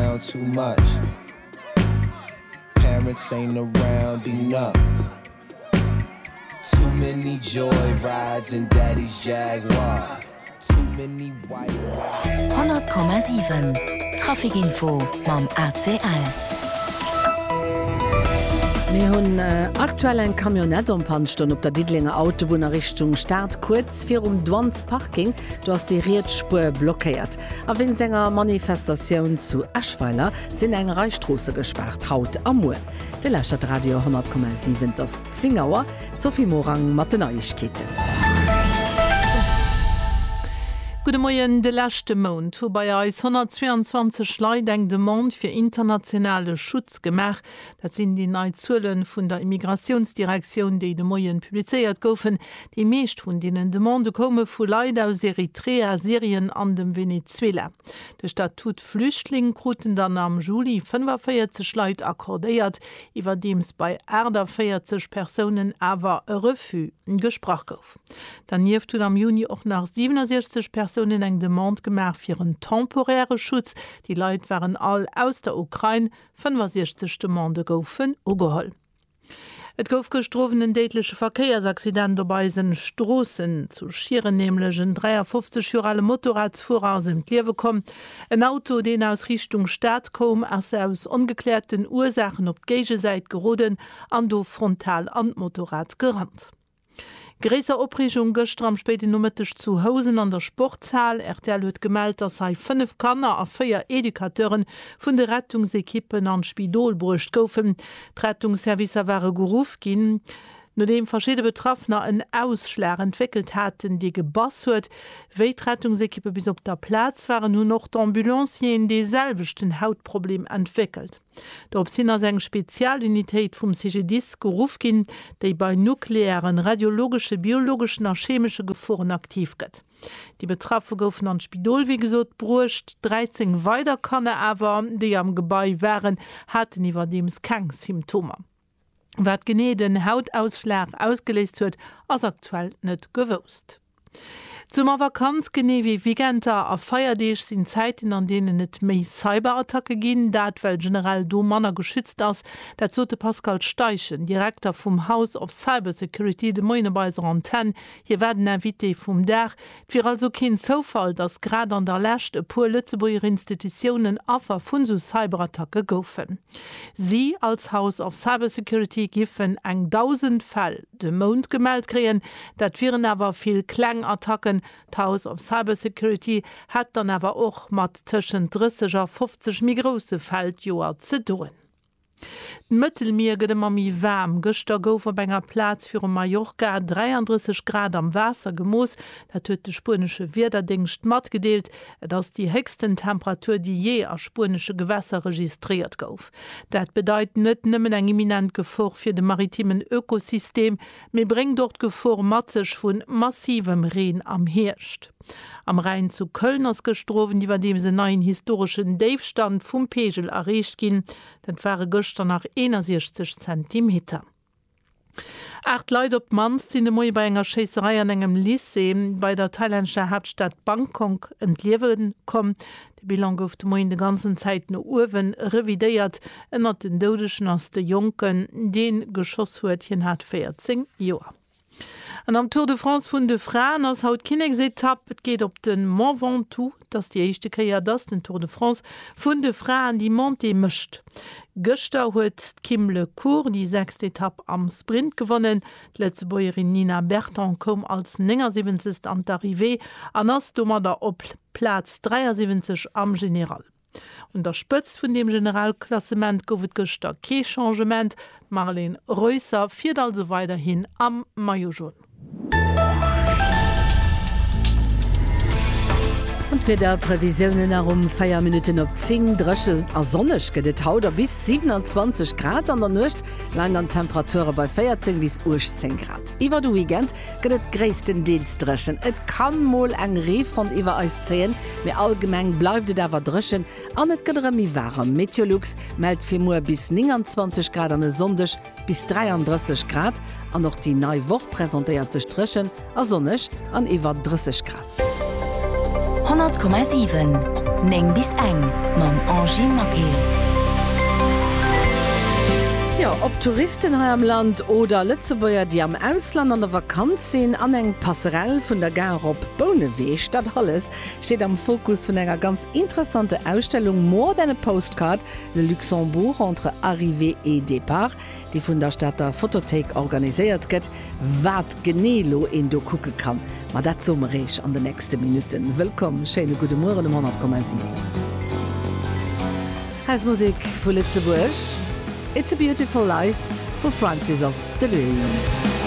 Around too much Parents ain't around enough Too many joy rides in daddy's Jaguar Too many white rides 100,7 Traficinfo mam ACL. Mir hunn aktuell eng Camionnette en panne stoen op der Diddelenger Autobunn a Richtung Stad, kuerz virum Douanesparking. Do ass déi riets Spuer blockéiert. A wéinst enger Manifestatioun zu Eschweiler sinn eng Rei Stroosse gespaart haut a muer. Dir lauschtert Radio 10,7, et ass 10 Auer. D'Sophie Morang mat den Neiegkeeten. Gudde Moien, De leschte Mount hu bei eis 122 Leit eng Demande fir internationale Schutz gemaach. Dat sinn déi nei Zuele vun der Immigratiounsdirektioun, déi de Moien publizéiert goufen. Déi meescht vun deenen Demandë koume vu Leit aus Eritrea, Syrien an dem Venezuela. De Statut Flüchtling kruten dann am Juli 45 Leit accordéiert, iwwerdeems bei 48 Persounen awer e Refus gesprach gouf. Dernieft hunn am Juni och nach 67 Persounen eng Demande gemaach fir en temporäre Schutz. Déi Leit waren all aus der Ukrain. 65 Demandë goufen ugeholl. Et gouf gëschter Owend en déidleche Verkéiersaccident op eise Stroossen. Zu Schieren nämlech en 53 Joer ale Motorradsfuerer ass ëm d'Liewe komm. En Auto, deen aus Richtung Stad koum, ass aus ongekläerten Ursaachen op d'Géigesäit geroden an do frontal an d'Motorrad gerannt. Gréisser Opreegung gëschter am spéiden Nomëtteg zu Housen an der Sportshal. Rtl huet gemellt, dass hei 5 Kanner a 4 Educateure vun de Rettungsekippen an d'Spidol bruecht goufen. D'Rettungsservicer ware geruff ginn, nodeem verschidde Betraffener en Ausschlag entwéckelt haten, dee gebass huet. Wéi d'Rettungsekippe bis op der Plaz waren, hunn och d'Ambulancieren dee selwechten Hautproblem entwéckelt. Dorops hin ass eng Spezialunitéit vum CGDIS geruff ginn, déi bei nuklearen, radiologesche, biologeschen a cheemesche Geforen aktiv gëtt. Déi Betraffe goufen an d'Spidol, wéi gesot, bruecht. 13 weider Kanner awer, déi am Gebai waren, haten iwwerdeems keng Symptomer. Wat genee den Hautausschlag ausgeléist huet, ass aktuell net gewousst. D'Summervakanz genee wéi Weekender a Feierdeeg sinn Zäiten, an deenen et méi Cyberattacke ginn. Dat well generell do manner geschützt ass. Dat sot de Pascal Steichen, Direkter vum House of Cybersecurity, de Moien op eiser Antenn. Hie war den Invité vum Dag. 't wier also keen Zoufall, dass grad an der Lescht e puer Lëtzebuerger Institutiounen Affer vun esou Cyberattacke goufen. Si als House of Cybersecurity giffen eng 1.000 Fäll de Mount gemellt kréien, dat wieren awer vill kleng Attacken. D'House of Cybersecurity hätt dann awer och mat tëschent 30 a 50 méi grousse Fäll d'Joer ze doen. D'Mëttelmier gëtt ëmmer méi waarm. Gëschter gouf op enger Plaz viru Mallorca 33 Grad am Waasser gemooss. Dat huet de spuenesche Wiederdéngscht matgedeelt. Et ass déi héchsten Temperatur, déi jee a spuenesche Gewässer registréiert gouf. Dat bedeit net nëmmen eng imminent Gefor fir de maritimen Ökosystem, mee bréngt och d'Gefor mat sech vu massivem Reen am Hierscht. Am Rhäin zu Köln ass gëschter Owend iwwerdeems en neien historeschen Déifstand vum Peegel erreecht ginn, dat ware gëschter nach 61 Zentimeter. Aacht Leit op d'mannst sinn de Moie bei enger Schéisserei an engem Lycée bei der thailännescher Haaptstad Bangkok ëm d'Liewe komm. De Bilan gouf de Moien de ganzen Zäit no uewen revidéiert. Ënnert den Doudegen ass de Jonken, dee geschoss huet. Hien hat 14 Joer. An am Tour de France vun de Fraen ass haut Kinneksetapp. Et geet op de Mont Ventoux. Et ass déi éischte Kéier, dass den Tour de France vun de Fraen déi Montée mécht. Gëschter huet d'Kim Le Cours déi sechst Etapp am Sprint gewonnen. D'Lëtzebuergerin Nina Berton koum als 79. an d'Arrivée an ass domadder op Plaz 73 am General. Un der Spëtzt vun deem Generalklassement gouf et gëschter kee Changement. D'Marlene Reusser fiert also weiderhin am Maillot Jaune. An d'Wiederprevisiounen nach um 4 Minutten op 10, Dréche a sonneg gëtt et haut a bis 27 Grad an der Nuecht leien dann d'Temperature bei 14 bis 18 Grad. Iwwer de Weekend gëtt et gréisstendeels dréchen. Et ka mol eng Reefront iwwer eis zéien, mee allgemeng bleift et awer dréchen an et gëtt erëm méi waarem. Meteolux mellt fir muer bis 29 Grad an e Sonndeg bis 33 Grad. An och déi nei Woch presentéiert sech dréchen a sonneg an iwwer 30 Grad. 100,7 9 bis eng mam Angie Maquet. Jo, ob Touristen hei am Land oder Lëtzebuerger, déi am Ausland an der Vakanz sinn an eng Passerelle vun der Gare op Bouneweg, dat alles steet am Fokus vun enger ganz interessanter Ausstellung More than a postcard, Le Luxembourg entre arrivée et départ. déi vun der Stater Photothéik organiséiert gëtt. Wat genee lo een do kucke kann, ma dat soe mer eech an den nächste Minutten. Wëllkomm, schéine gudde Mueren um 100,7. Haus Musek vu Lëtzebuerg, It's a Beautiful Life vu Francis of the Lyon.